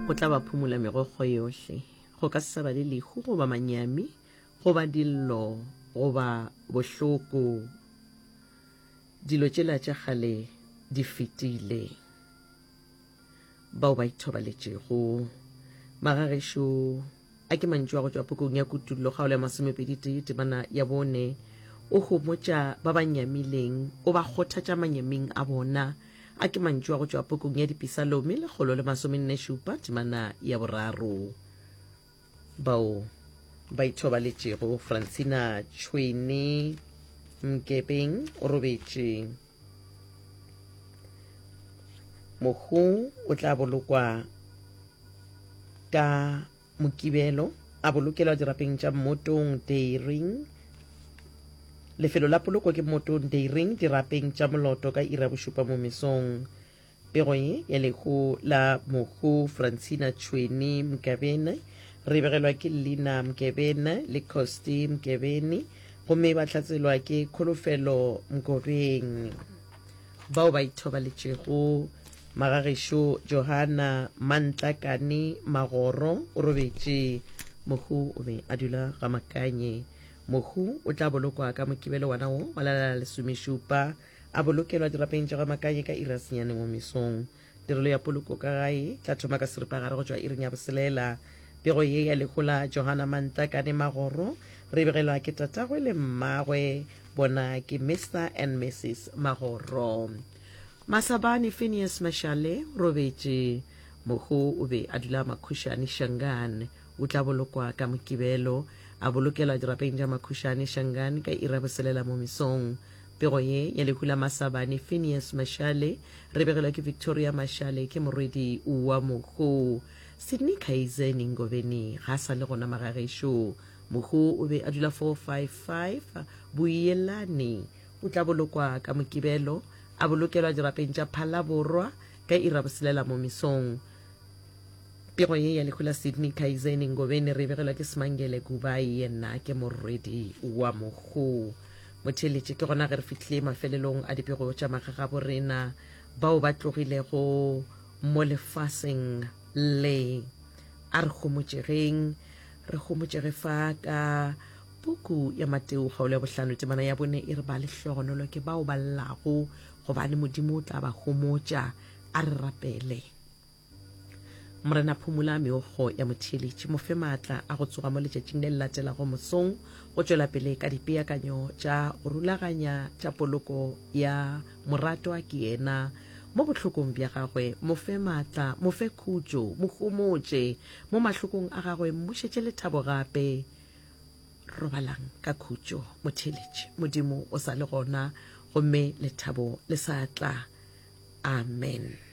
go tla ba phumola megokgo yohle go ka se sa ba le lehu goba manyami goba dillo goba bohloko dilo tšela tša kgale di fetile bao ba ithobaletšego magagešo A ke mantšu a go tšwa pukung ya Kutullo kgaolo ya masomepedi-tee temana ya bone. O homotša ba ba nyamileng, o ba kgothatša manyeming a bona. A ke mantšu a go tšwa pukung ya Dipisalomi lekgolo le masomenne-šupa temana ya boraro. Bao ba ithobaletšego, Francina Tšhwene Mkebeng o robetše. mohu o tla bolokwa ka mokibelo a bolokelwa dirapeng tša mmotong deiring lefelo la poloko ke mmotong deiring dirapeng tša moloto ka ira bošupa mo mesong Pego ye ya lehu la mohu Francina Tšhweni Mkebene, re begelwa ke Lina Mkebene le Costi Mkebeni gomme ba hlatselwa ke Kholofelo Mkobeng. Bao ba ithobaletšego, Magagešo Johana Mantlakane Magoro o robetše. Mohu o be a dula ga Makanye. Mohu o tla bolokwa ka Mokibelo wona wo wa la lesomešupa. A bolokelwa dirapeng tša Rwamakaye ka iri ya senyane mo mesong. Tirelo ya poloko ka gae tla thoma ka seripagare go tšwa iring ya boselela. Pego ye ya lehu la Johana Mantlakane Magoro re begelwa ke tatagwe le mmagwe, bona ke Mister and Mrs Magoro. Masabane Phineas Mashale o robetše. Mohu o be a dula Makhušane, Shangaan. O tla bolokwa ka Mokibelo. A bolokelwa dirapeng tša Makhušane, Shangaan ka iri ya boselela mo mesong. Pego ye ya lehu la Masabane, Phineas Mashale, re begelwa ke Victoria Mashale, ke morwedi wa mohu. Sydney Kaize Ningobeni ga a sa le gona magagešo. Mohu o be a dula 455 Boyelane. O tla bolokwa ka Mokibelo, a bolokelwa dirapeng tša Phalaborwa ka iri ya boselela mo mesong. Pego ye ya lehu la Sydney Kaize Ningobeni re e begelwa ke Smangele Gubai, yena ke morwedi wa mohu. Motheeletše, ke gona ge re fihlile mafelelong a dipego tša magagabo rena bao ba tlogilego mo lefaseng le. A re homotšegeng, re homotšege fa ka puku ya Mateo kgaolo ya bohlano temana ya bone e re ba lehlogonolo ke bao ba llago gobane Modimo o tla ba homotša. A re rapele. Morena, phumola meokgo ya motheeletši, mo fe maatla a go tsoga mo letšatšing le le latelago mosong go tšwela pele ka dipeakanyo tša go rulaganya tša poloko ya moratwa ke yena mo bohlokong bja gagwe. Mo fe maatla, mo fe khutšo, mo homotše mo mahlokong a gagwe, mmušetše lethabo gape. Robalang ka khutšo, motheeletši. Modimo o sa le gona, gomme lethabo le sa tla. Amen.